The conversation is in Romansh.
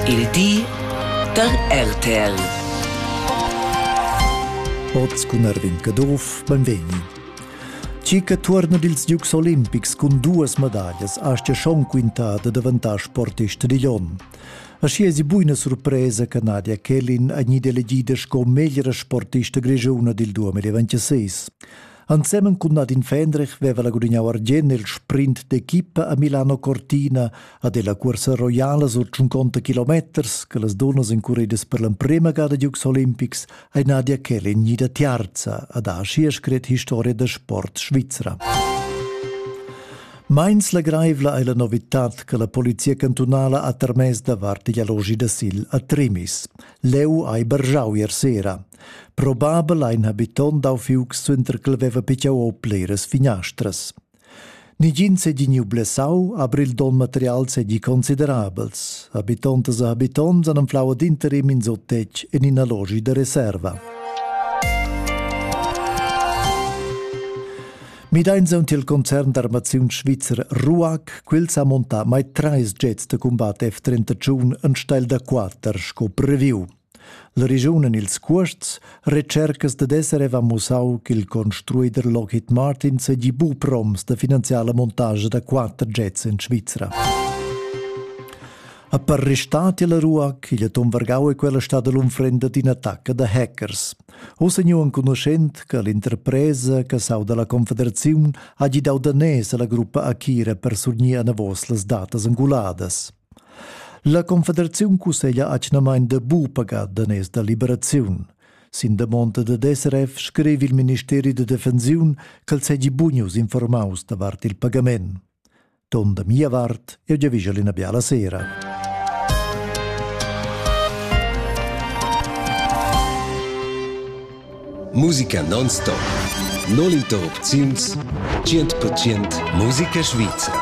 Il di da RTL. Oz cun Erwin Caduff, benvegni. Cica tuorna dils Dukes olimpics cun duas medaglias aschia schon quinta da daventar sportist digl onn. Aschi esi buina surpresa che Nadia Kellin è gnida elegida sco meglra sportista grigiuna dil 2026. Ensemen cun Nadine Fendrich veva la gudignau argien nel sprint d'equipa a Milano Cortina a della cursa roiala sur 50 kilometers che las dunnas incuridas per l'emprema gada Dukes Olympics ei Nadia Kelly gnida tiarza ad ha schier scret historia da sport svizra. Meins legreivla ei la novitad che la polizia cantunala ha termess davart igl allogi da sil a Trimis. Leu ei bergiau ier sera. Probabel ha in habiton dau fiuc suenter ch'el veva picciau o bleras finastras. Nigin seginiu blessau, aber il don material segi considerabels. Habitontas e habitons han anflau ad interim in sottetg en ina logi da reserva. Mideins aunc il concern d'armaziun svizzer RUAC, quel sa monta mai treis jets da combat F-31 en steil da quater sco previu. La regiun en ils cuosts retschercas dad esser aveva mussau ch'il construider Lockheed Martin seigi buc proms da finanziar la montascha da quater jets en Svizra. A per restat la Ruac, igl atom vargau e quella stada l'unfrenda d'ina attacca da hackers. Ossa nu enconuschent che l'interpresa che sau dalla Confederaziun ha gidau danès alla gruppa Akira per surgnir anavos las datas anguladas. La Confederaziun cusseglia atgnamain da bu pagar daners da liberaziun. Sin damonda dad SRF scrivi il ministeri da defensiun ch'el segi bunius informaus davart il pagament. Ton da mia vart, eu giavischa l'ina biala sera. Musica non-stop. Non interrupziuns 100% musica svizra.